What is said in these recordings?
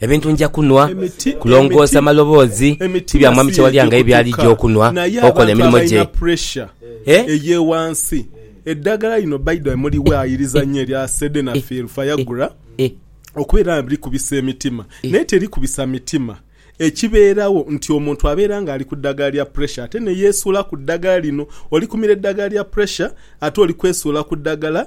Ebintu nja kunhwa, kulongoosa maloboozi, ti bya Mwami Kyewalya nga ye byali gya okunhwa, okola emirimo gye. Eddagala lino Baido emuli we ayiriza nnyo erya Sedenafil Fiagura okubeera nga likubisa emitima naye terikubisa mitima. Ekibeerawo nti omuntu abeera nga ali ku ddagala lya puresha ate ne yeesuula ku ddagala lino. Olikumira eddagala lya puresha ate oli kwesuula ku ddagala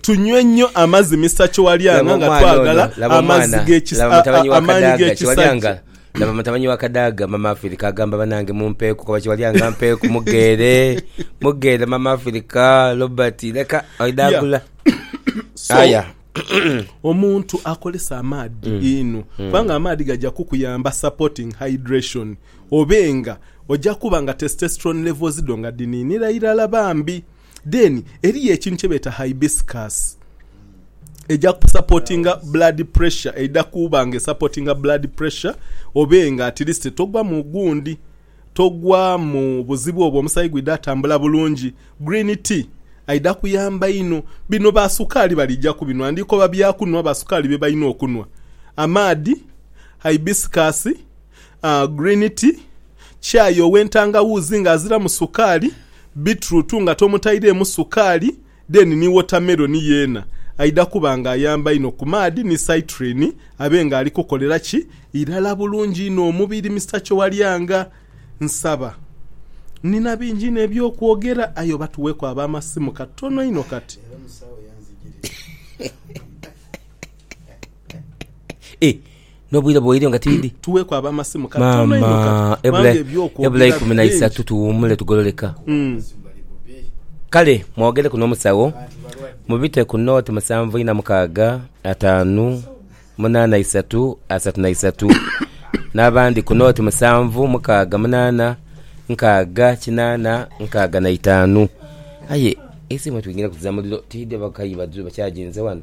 Tunywe nnyo amazi Mister Kyowalyanga nga twagala amazi amaanyi g'ekisajja. Laba mutabani wa Kadaaga, Mama Afirika agamba banange mumpeeku kuba Kyowalyanga mpeeku mugheere, mugheere Mama Afirika, Robert leka oidhaagula. Aya. Omuntu akozesa amaadhi inho kubanga amaadhi gaja kukuyamba supporting hydration obe nga oja kuba nga testosterone levels dho nga dhiniinira irala bambi. Then eriyo ekintu kyebeeta hibiscus eja kusapotinga blood pressure eidha kuuba nga esapotinga blood pressure obe nga at least togwa mu gundi togwa mu buzibu obwo omusayi gwidha tambula bulungi. Green tea aidha kuyamba inho. Bino ba sukaali balija kubinwa ndikoba bya kunwa ba sukaali bye balina okunwa. Amaadhi, hibiscus. Green tea, chai ow'entangawuuzi nga aziramu sukaali, beetroot nga tomutaireemu sukaali then ni watermelon yeena aidha kuba nga ayamba inho ku maadhi ni citrine abe nga ali kukolera ki irala bulungi inho omubiri. Mister Kyowalyanga nsaba nnina bingi inho eby'okwogera aye oba tuweeku ab'amasimu katono inho kati. N'obwire bweire nga tiidhi. Tuweeku ab'amasimu katono inho kati, kubanga eby'okwogera biri bingi. Maama, ebula ikumi na isatu tuwuumule tugololeka. Kale mwogereku n'omusawo, mubite ku nooti musanvu ina mukaaga, ataanu, munaana isatu, asatu na isatu, n'abandi ku nooti musanvu, mukaaga, munaana, nkaaga, kinaana, nkaaga na itaanu. Aye eisimu mwe twingiraku za muliro tiidhi, oba kayi badhu bakyaginze wano?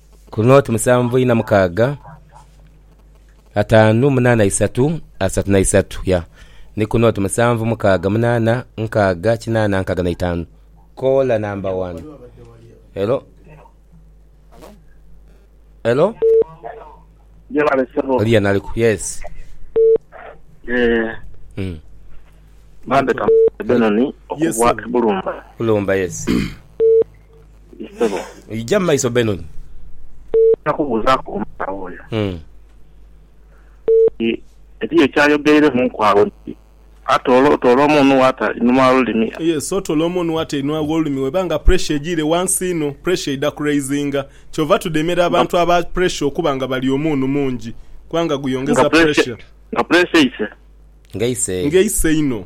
Ku nooti musanvu ina mukaaga ataanu munaana isatu asatu na isatu ya ni ku nooti musanvu mukaaga munaana nkaaga kinaana nkaaga na itaanu. Koola namba wani. Hello? Hello? Yebale ssebo. Oli yanaliku? Yes. Eh, Mm. Bambe Kamoga Benoni Yes, okubwa sir. e Bulumba. Kulumba yes. Ssebo. Ija mu maiso Benon. Nja kubuuzaaku omusawo oyo nti, Eriyo eky'ayogereremuku agho nti, Atoola, otoola omunhu w'ata einhuma w'olulimi? Yes, otoola omunhu w'ata einhuma w'olulimi w'eba nga puresha egiire ghansi inho, puresha eidha kuraizinga. Kyova tudemera abantu aba puresha okuba nga balya omunhu mungi kubanga guyongeza puresha. Nga puresha eise? Nga eise inho.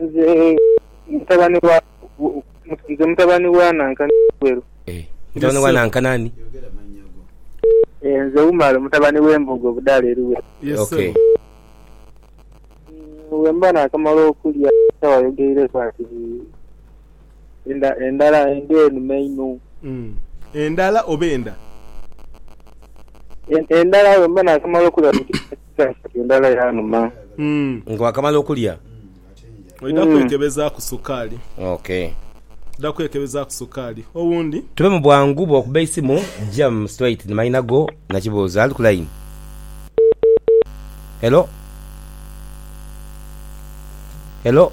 Nze mutabani wa nze mutabani wa Nanka Nagweru. Eh mutabani wa Nanka nani? Eh nze Umar mutabani we Mbogo Budara e Luwero. Yes sebo. Okay. Bwemba nakamala okulya kyawayogeireku ati Enda, endala, enda enhume inho. Umm endala oba enda? En, endala bwemba nakamala okulya ku kati endala yanuma. Umm. Nga wakamala okulya. Oidha Umm. kwekebezaaku sukaali. Ok. Oidha kwekebezaaku sukaali. Owundi? Tube mu bwangu bwokuba eisimu jam straight ni mayina go na kibuuzo. Ali ku line. Hello? Hello?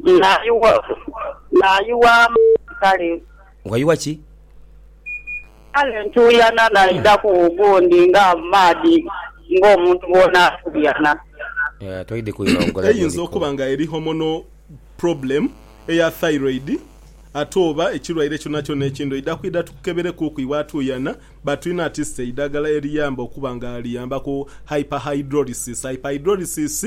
Naayuwa, naayuwa amaadhi kale. Ghayuwa ki? Kale ntuuyana naidhaku ogundi nga amaadhi ng'omuntu bwona atuuyana. Eeh toidhi kwira ogho ghaligho Eyinza okuba nga eri hormonal problem eya thyroid ate oba ekirwaire kyonakyona ekindhi oidha kwidha tukukeberekuuku iwe atuuyana but tulina at least eidhagala eriyamba okuba nga liyambaku hyperhidrolysis. Hyperhidrolysis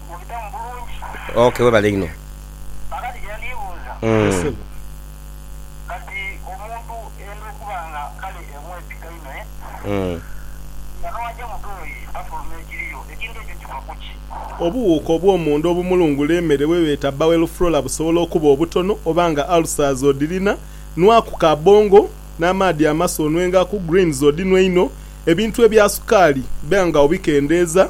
Ok webale inho. Obuwuuka obwomunda obumulungula emere bwebeeta bowel flora busobola okuba obutono oba nga ulcers odhirina, nwaku ka bongo n'amaadhi amasu onwengaku, greens odhinwe inho, ebintu ebya sukaali ba nga obikendeeza.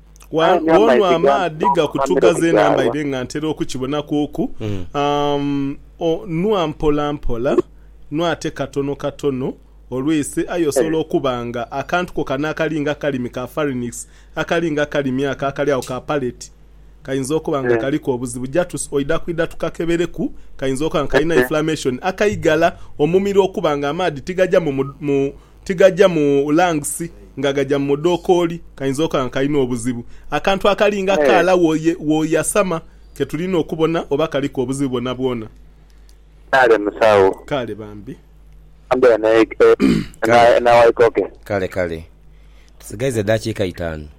Wonwa amaadhi gakutuga zeena mbaire nga ntera okukibonakuuku. Nwa mpola mpola, nwa ate katono katono olw'eise aye osobola okuba nga akantu ko kano akali nga akalimi ka pharynx, akali nga akalimi ako akali agho ka palate kainza okuba nga kaliku obuzibu. Ja oidha kwidha tukakebereku, kainza okuba nga kalina inflammation akaigala omumiro okuba nga amaadhi tigaja mu... Tigaja mu lungs nga gaja mu mudhokooli kainza okola nga kalina obuzibu. Akantu akali nga kaala w'oyasama ke tulina okubona oba kaliku obuzibu bwonabwona. Kale musawo. Kale bambi. Kale, kale. Tusigaiza edaakiika itaanu.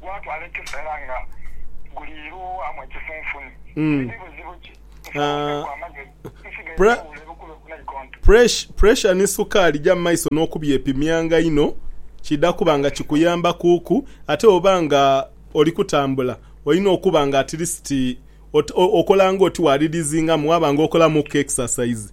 Gwatwala ekiseera nga guliirwamu ekifunfuni. Buli bibuzibu ki nsawo ku amagezi nsigaire newuula ebukulo ku naikonto. Puresha ni sukaali ja mu maiso n'okubyepimyanga inho kiidha kuba nga kikuyamba kuku ate bwoba nga oli kutambula olina okuba nga atilisiti okola ng'oti wa ridizingamu waba nga okolamuku exercise.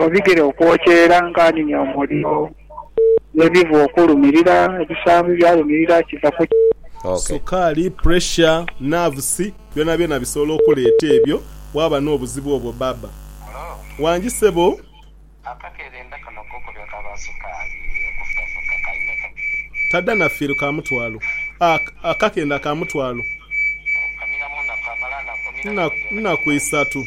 Obigere okwokya era nkanhinia omuliro, n'ebivu okulumirira, ebisambi byalumirira, kiva ku ki? Sukaali, pressure, nerves byonabyona bisobola okuleeta ebyo waaba n'obuzibu obwo baaba. Wangi sebo. Tadha na fiiru ka mutwalo. Akakenda ka mutwalo. Nnaku isatu.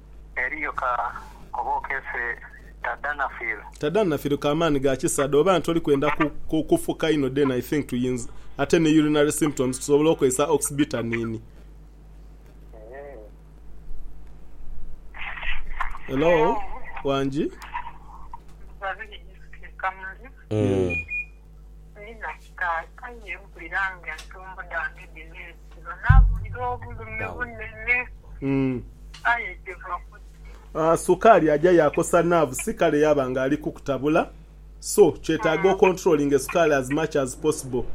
Eriyo ka oba okeese Tadanafil? Tadanafil ka maani ga kisa de oba nti oli kwenda kufuka inho then I think tuyinza ate ni urinary symptoms tusobola okozesa oxybutanini. Hello wangi. Kaakano mpulira ng'entumbwe dhange dhineesiba, naawulira obulumi bunene. Aye kiva ku ki? Sukaali aja yaakosa naavu si kale yaaba ng'ali kukutabula. So, kyetaaga okontulolinge sukaali as much as possible.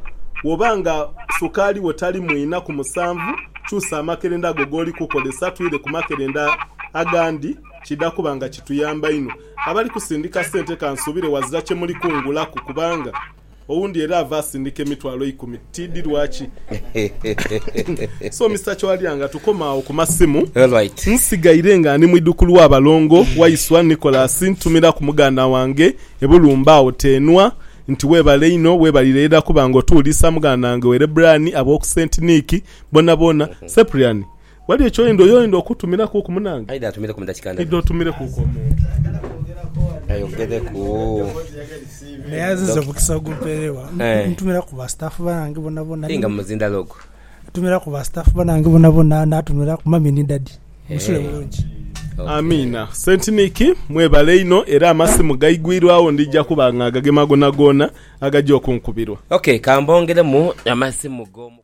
Bw'oba nga sukaali wo tali mu ina ku musanvu, kyusa amakerenda go g'oli kukozesa twire ku makerenda agandi, kidha kuba nga kituyamba inho. Abali kusindika sente kansuubire wazira kye muli kungulaku kubanga Owundi era ava asindika emitwalo eikumi tiidhi lwaki. So Mister Chwalya nga tukoma agho ku masimu, nsigaire nga ndi mu idhukulu wa balongo waiswa Nicholas ntumira ku muganda wange e Bulumba agho Teenwa nti webale inho webalire era kuba nga otuwuliisa muganda wange Werebrani ab'oku Saint Nick bonaboona Cyprian Ghali eky'oyenda oy'oyenda okutumirakuuku munange? Aidha atumireku mu dakika ndhala. Aidha otumilekuuku omuntu. Ayogereku. Naye azize omukisa ogumperewa. Ntumiraku ba staff banange bonabona. Aye nga mu muzinda log. Ntumiraku ba staff banange bonabona natumiraku mummy ni daddy. Musule bulungi. Amiina. Saint Nick mwebale inho era amasimu gaigwirwagho ndija kuba nga ngagema goonagoona agaja okunkubirwa. Ok, ka mbongeremu amasimu g'omukwano.